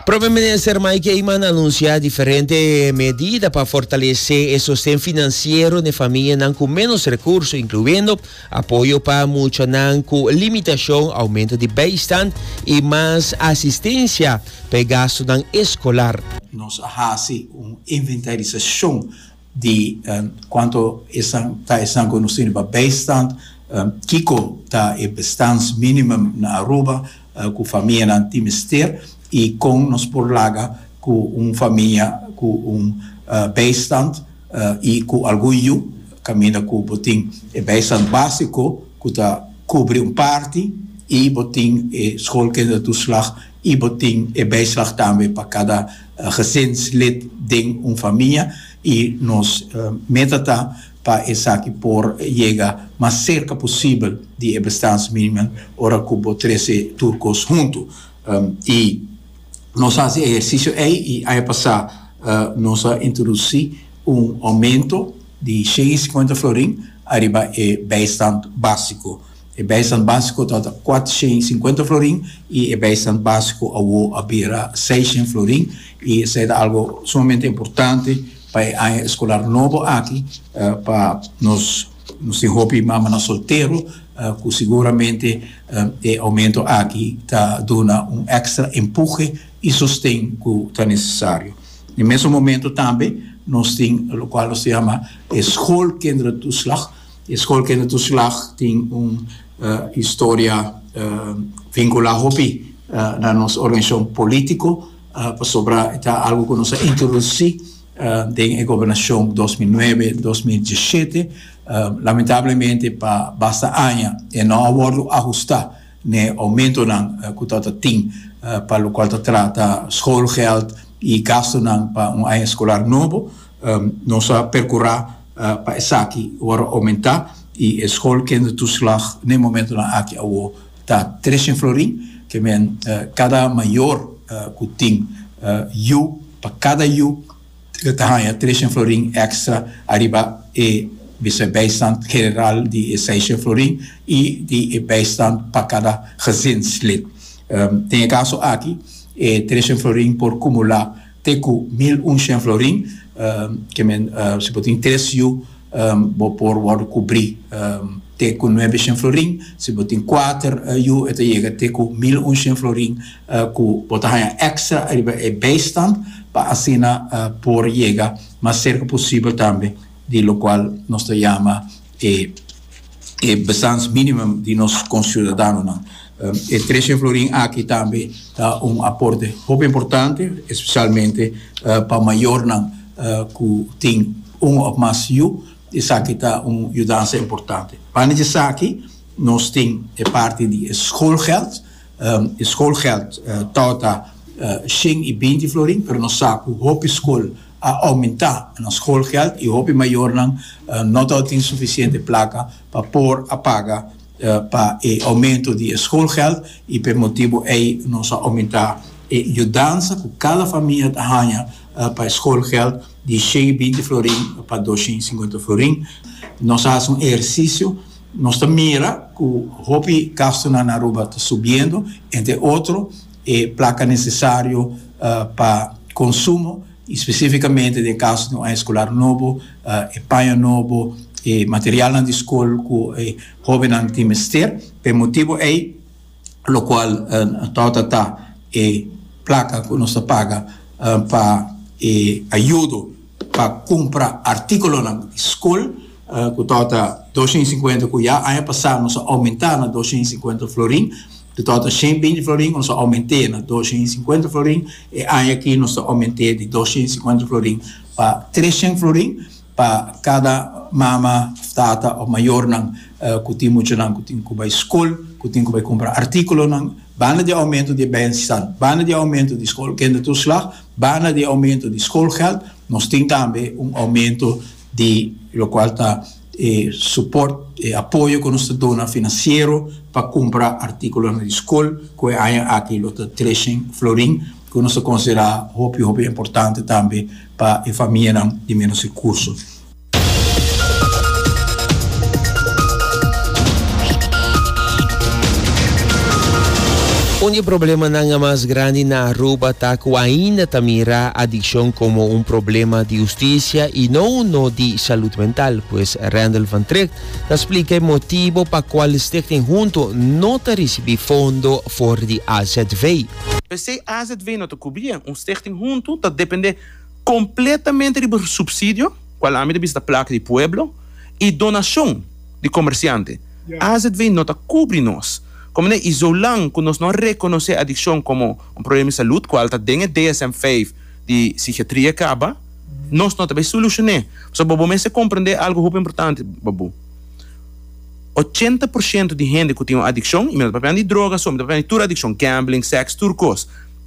Prome minister Mike Eman a anuncia diferente medida pa fortalece e sosten financiero n'e famianan cu menos recurso, incluyendo apoyo pa muchanan cu limitacion, aumento di bijstand y mas asistencia p'e gastonan escolar. Nos a haci un inventarisacion di cuanto esnan ta esnan cu nos tene pa bijstand, kico ta e bestans minimum na Aruba cu famianan tin mester y con nos por laga cu un famia cu un bijstand y cu algun yu, caminda cu bo tin e bijstand basico cu ta cubri un parti y bo tin e schoolkindertoeslag y bo tin e bijslag tambe pa cada. gezinslid den un famia y nos meta ta pa esaki por yega mas cerca posibel di e bestaansminimum ora cu bo trece tur cos hunto. Y nos a haci e ehercicio ey y aña pasa nos a introduci un aumento di shen y cincuenta florin ariba e bijstand basico. E bijstand básico tabata kuatrushen sinkuenta florin i e bijstand básico awó a bira seishen florin i esei ta algu sumamente importante pa e aña eskolar nobo aki pa nos nos tin hopi mamanan soltero ku siguramente e oumento aki ta duna un èkstra empuje i sosten ku ta nesesario. Na e mesun momentu tambe nos tin lokual nos ta yama e schoolkinderentoeslag. E skol kende tur slag tin un historia vinkulá hopi na nos organisashon polítiko pasobra e ta algu ku nos a introdusí den e gobernashon dos mil nuebe, dos mil diesshete. Lamentablemente pa basta aña e no a wòrdu ahustá n'e oumentonan ku tabata tin pa lokual ta trata skol gèld i gastunan pa un aña skolar nobo. Nos a perkurá. pa esaki wòrdu a oumentá i e skol kende tuslag n'e momentunan aki awó ta Treshyn Florin, ke men kada mayor ku tin yu, pa kada yu ta haña Treshyn Florin extra ariba e bisa bijstand general di e Seishyn Florin i di e bijstand pa kada gezinslid. Den e kaso aki e Treshyn Florin por kumulá. Te cu mil un shen florin, ke men si bo tin tres yu, bo por wordo cubri te cu nuebe shen florin, si bo tin cuater yu e ta yega te cu mil un shen florin cu bo ta haya extra ariba e bijstand pa asina por yega mas cerca posibel tambe di locual nos ta yama E e bestans minimum di nos conciudadanonan. E Trece florin aki tambe ta un aporte hopi importante, especialmente pa mayornan cu tin un of mas yu, esaki ta un yudansa importante. Pana di esaki nos tin e parti di e schoolgeld. E schoolgeld tabata shen y binti florin, pero nos sa cu hopi school, a oumenta nos schoolgeld y hopi mayornan no ta tin suficiente placa pa por a paga pa e oumento di e schoolgeld y p'e motibo ey nos a oumenta e yudansa cu cada famia ta hanja pa e schoolgeld di shen y binti florin pa dos shen y singuenta florin. Nos a haci un ehercicio, nos ta mira cu hopi gastonan na Aruba ta subiendo entre otro, e plaka nesesario pa konsumo, i spesífikamente den kaso di un aña skolar nobo, e paño nobo, e materialnan di skol ku e hóbennan tin mester. Pa e motibu ei lokual torta ta e plaka ku nos ta paga pa e ayudo. pa cumpra articulonan di scol cu tabata doscientos y cincuenta cuya, aña pasa nos a aumenta na doscientos y cincuenta florin, cu tabata ciento binti florin nos a aumente na doscientos y cincuenta florin, e aña aki nos ta aumente di doscientos y cincuenta florin pa trescientos florin pa cada mama, tata of mayornan cu tin muchanan cu tin cu bay scol, cu tin cu bay cumpra articulonan, banda di aumento di e bensistal, banda di aumento di scol, kende tur slag. Banda di oumento di skolgèld, nos tin tambe un oumento di lokual ta e suport, e apoyo ku nos ta duna finansiero pa kumpra artíkulonan di skol, ku e aña aki lo ta treshèn florin, ku nos ta konsiderá hopi hopi importante tambe pa e famianan di ménos rekurso. Un di e problemanan mas grandi na Aruba ta cu ainda ta mira adiccion como un problema di justicia y no uno di salud mental. Pues Randall van Tricht ta splica e motibo pa cual Stichting Hunto no ta ricibi fondo for di AZV. P'esey AZV no ta cubri e. Un Stichting Hunto ta depende. Completamente riba subsidio, cual ami ta bisa ta placa di pueblo, y donacion di comerciante, azv no ta cubri nos. Comene y zolang cu nos no a reconoce adiccion como un problema di salud, cual ta den e DSM vijf di psichiatria e caba, nos no ta bay solucione. Pasobra bobo mester comprende algo hopi importante, baboe. Ochenta por ciento di hende cu tin un adiccion, y mi no ta papia di droga so, mi ta papia di tur adiccion, gambling, sex, tur cos,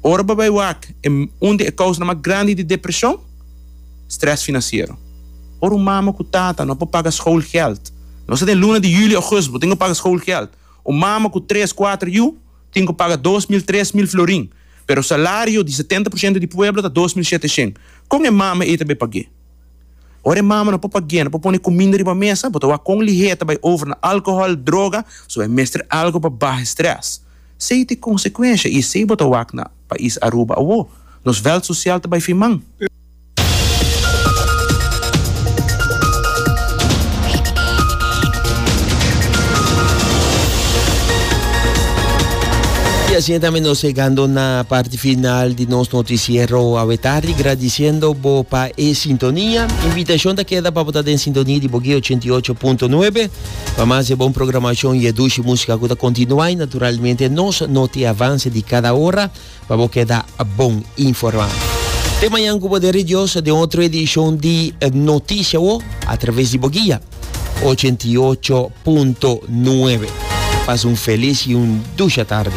Ora bo bai wak, e un di e kousnan mas grandi di depreshon? Strès finansiero. Ora un mama ku tata no por paga skoolgèld, nos ta den luna di yuli, ogust, bo tin ku paga skoolgèld. Un mama ku tres, kuater yu tin ku paga dos mil, tres mil florin, pero salario di setenta por shento di pueblo ta dos mil sheteshen. Kon e mama ei ta bai pag'é? Ora e mama no por pag'é, no por pone kuminda riba mesa, bo ta wak kon lihé ta bai over na alkohòl, droga, so e mester algu pa baha e strès. Sey t'e consecuencia y sey bo ta wak na pais Aruba awo, nos veld social ta bay fin man. Y asina tambe nos hegando na parti final di nos noticiero awe tardi, gradiciendo bo pa e sintonia. Invitacion ta keda pa bo ta den sintonia di Bogué ochenta i ocho punto nuebe. Pa mas e bon programacion y e dushi musica cu ta continua y naturalmente nos notiavanse di cada ora pa bo keda bon informa. Te mañan cu poder di Dios den otro edicion di Noticia Awo a traves di bo guia 88.9. Pasa un feliz y un dusha tardi.